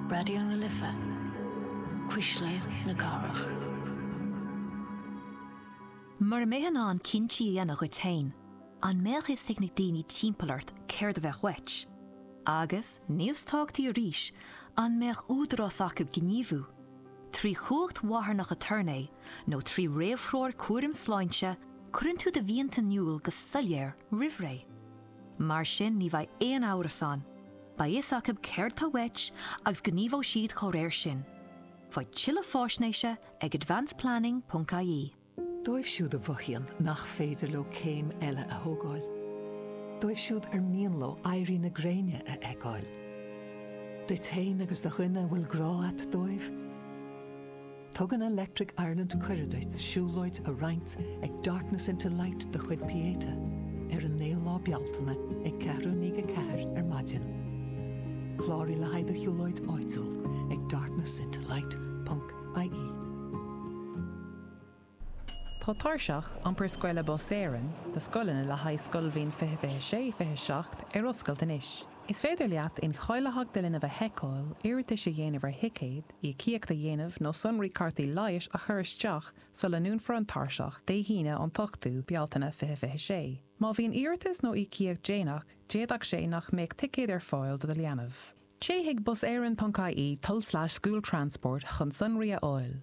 Raidió na Life, Cuisle na Cathrach. Mura mbeifeá in ann cinntí a dhéanamh dhuit féin, an mbeadh fhios ag na daoine timpeall ort céard a bheadh uait? Agus, níos tábhachtaí arís, an mbeadh údarás acu gníomhú, trí chumhacht mharthanach aturnae nó trí réamhthreoir cúraim sláinte, cuireann tú do mhianta in iúl go soiléir roimhré. Mar sin ní bheidh aon amhras ann, beidh fhios acu céard tá uait agus gníomhóidh siad dá réir. Faigh tuilleadh fáisnéise ag advanceplanning.ie. Dóibh siúd a mhothaíonn nach féidir leo céim eile a thógáil. Dóibh siúd ar mian leo éirí na gréine a fheiceáil. Duit féin agus do dhuine a bhfuil grá a't dóibh. Tugann Electric Ireland cuireadh duit siúlóid a roinnt ag Darkness into Light de chuid Pieta ar an 9ú lá Bealtaine ag ceathrú i ndiaidh a ceathair ar maidin. Cláraigh le haghaidh do shiúlóid áitiúil ag darknessintolight.ie. Tá Tairseach Iompair Scoile Bus Éireann do scoileanna le haghaidh scoilbhliain 2026, 27 ar oscailt anois. Is féidir leat incháilitheacht do linbh a sheiceáil, iarratas a dhéanamh ar thicéad, íocaíocht a dhéanamh nó sonraí cárta leighis a chur isteach sula ndúnfar an tairseach Dé hAoine an t-ochtú, Bealtaine, fiche fiche sé. Má bhíonn iarratas nó íocaíocht déanach, d'fhéadfadh sé nach mbeadh ticéad ar fáil do do leanbh. Téigh chuig buseireann.ie tulslais schooltransport chun sonraí a fháil.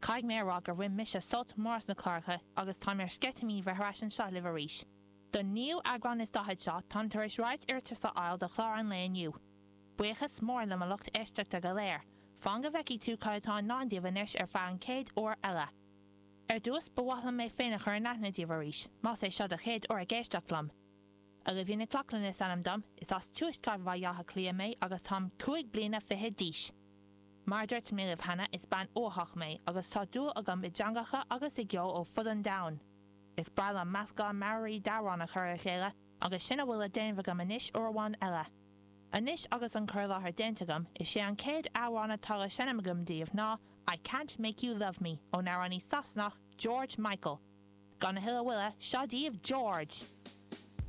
Caithfidh mé a rá gur bhain mise sult mór as na cláracha agus táim ar sceitimíní bheith ar ais anseo libh arís. Don naoú eagrán is daichead seo, táim tar éis roinnt iarratas a fháil do chlár an lae inniu. Buíochas mór le mo lucht éisteachta go léir. Fan go bhfeicfidh tú cad atá i ndán daoibh anois ar feadh an chéad uair eile. Ar dtús, ba mhaith liom mé féin a chur in aithne daoibh arís, más é seo do chéad uair ag éisteacht liom. Ailbhe Nic Lochlainn is ainm dom, is as tuaisceart Bhaile Átha Cliath mé agus táim cúig bliana fichead d'aois. Mar a dúirt mé libh cheana, is bean uathach mé agus tá dúil agam i dteangacha agus i gceol ó fud an domhain. Is breá liom meascán mearaí d'amhráin a chur le chéile agus sin a bhfuil le déanamh agam anois uair amháin eile. Anois agus an cur i láthair déanta agam, is é an chéad amhrán atá le seinm agam daoibh ná I Can't Make You Love Me ón amhránaí Sasanach George Michael. Gan a thuilleadh moille, seo daoibh George!